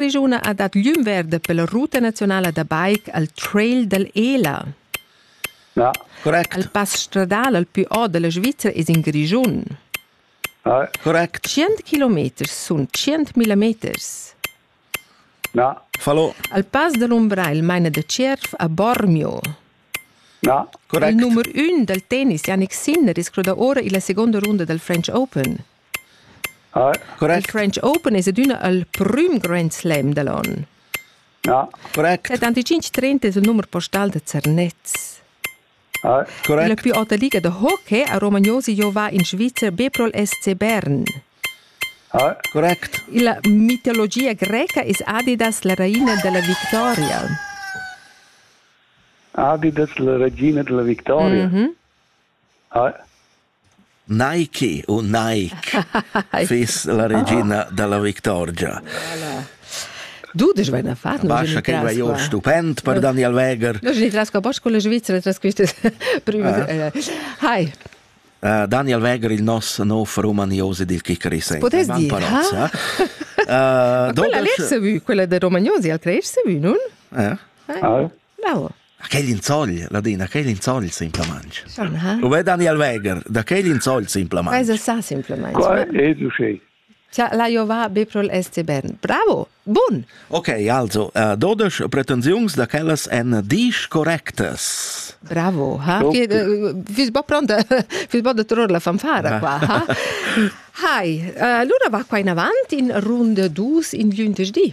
regiuna ha dat glüm verde per la ruta nazionala da bike al Trail dell'Ela. Ja, correct. Il pass stradal al più o della Svizzera es in Grischun. Ah, correct. 100 km sun 100.000 meters. Ja, Fallo. Al pass dell'Umbrail maina da Cerf a Bormio. ja, Il correct. numero 1 dal tennis Yannick Sinner riscruda ora illa seconda runda del French Open. Il French Open es adüna il prüm grand slam da l'on. Ja, correct. Dad antichinch trenta es il numer postal da Zernez. Il più auta liga da hockey a Romagnosi giova in Svizzer be pro'l SC Bern. Correct. Illa mitologia greca es Adidas la raina da la victoria. Adidas la regina della victoria. Mm -hmm. Nike u Nike fiss la regina dalla victorgia. Voilà. Dudisch vain a far. Bascha che vai or stupend per Daniel Weger. No, je tras pas con le Svizzera tras queste prime. Hi. Uh, Daniel Weger il nos nov romaniosi dil Kikari Potes dir, ha? Uh, quella lez vu, quella de Romaniosi al crees vu, non? Eh? Ah. Bravo. Da quel insogl, Ladina, quel insogl simplamain. Schon, ha? U è Daniel Weger, da quel insogl simplamain. Quai sa simplamain. Qua è duché. Tja, la Jova Beprol SC Bern. Bravo! Bun! Ok, also, uh, 12 pretensiuns da quellas en disch correctas. Bravo, ha? Okay. Fiss bo pronta, fiss bo da trovare la fanfara qua, ha? Hai, uh, allora va qua in avanti in runda dus in giuntes di.